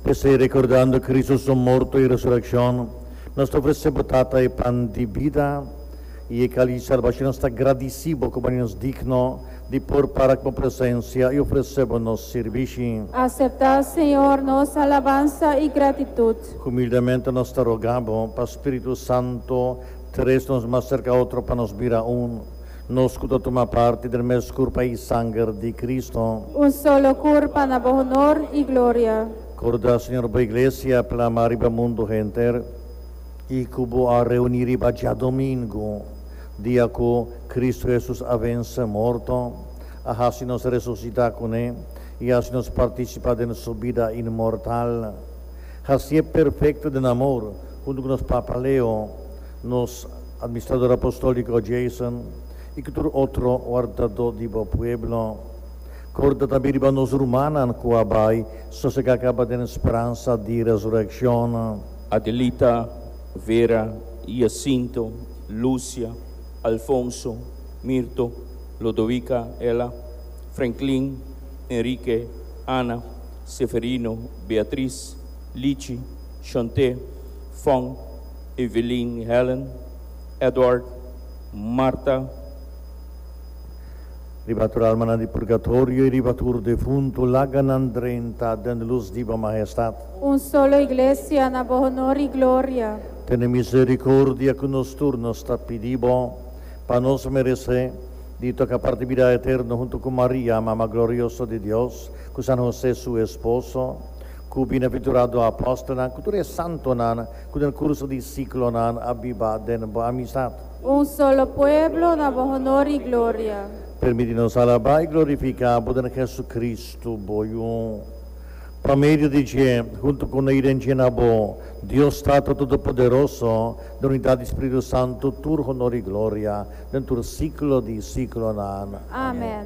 P'esei, rekordando Kristu su morto i resurekshon, nos ta ofresé bo, Tata, e pan di bida i e kalis di salbashon. Nos ta gradisí bo ku bo haninos digno di por para ku bo presensia i ofresé bo nos sirbishi. Aseptá, Señor, nos alabansa i gratitut. Humildemente nos ta rogá bo pa Spiritu Santu tres nos mas serka otro pa nos bira un. Nos cu ta tuma parti der mes curpa y sanger di Cristo. Un solo curpa na bo honor y gloria. Corda, Señor, bo Iglesia plama riba mundo henter y cu bo a reuni riba djadomingo, dia cu Cristo Jesus a vense morto, a haci nos resucita cu ne y a haci nos participa den su bida inmortal. Haci'e perfecto den amor, hunto cu nos papa Leo. Nos Administrador Apostolico Jason y cu tur otro wardadó di bo pueblo. Corda tambe riba nos rumannan cu a bai sosega caba den speransa di resurreccion. Adelita, Vera, Jacinto, Lucia, Alfonso, Mirto, Lodovica, Ella, Franklin, Enrique, Ana, Seferino, Beatriz, Lichi, Shonté, Fon, Evelyn, Helen, Edward, Marta. Riba tur almanan di purgatorio y riba tur defuntu laga nan drenta den luz di bo Mahestad. Un solo Iglesia na bo honor y gloria. Tene misericordia cu nos tur, nos ta pidi bo, pa nos merece, di toca parti bida eterno hunto cu Maria, Mama Glorioso di Dios, cu San Jose, su esposo, cu bina pinturado Apostelnan, cu tur e Santonan Cu den curso di ciclonan a biba den bo amistad. Un solo pueblo na bo honor y gloria. Permiti nos alaba y glorifica bo den Jesucristo, bo Yu. Pa medio di dje, hunto cu na iden dje na bo, Dios Tato Todopoderoso, den unidad di Spiritu Santo, tur honor y gloria den tur ciclo di ciclonan. Amen.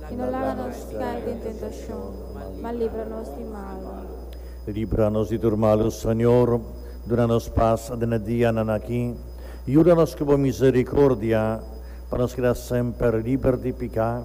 I no laga nos cai den tentacion, ma libra nos di malu. Libra nos di tur malu, Señor, duna nos pas den e dianan aki. Yuda nos cu bo misericordia, pa nos keda semper liber di pica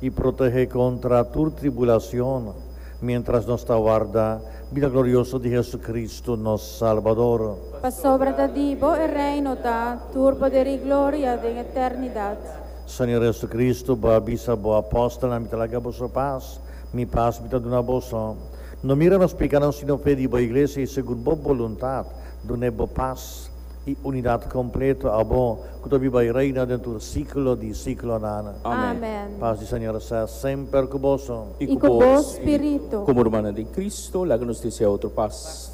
i protege contra tur tribulacion, mientras nos ta warda bida glorioso di Jesucristo, nos Salbador. Pasobra ta di bo e Reino ta tur poder i gloria den eternidad. Señor Jesucristo, bo a bisa bo apóstolnan, Mi ta laga boso pas, Mi pas Mi ta duna boso. No mira nos pekánan, sino fe di bo Iglesia, i segun bo boluntat, dun'é bo pas i unidat kompleto, abo ku ta biba i reina den tur síkulo di síkulonan. Amén. Pas di Señor sea semper ku boso. I ku bo spiritu. Komo rumannan den Cristo, laga nos desea otro pas.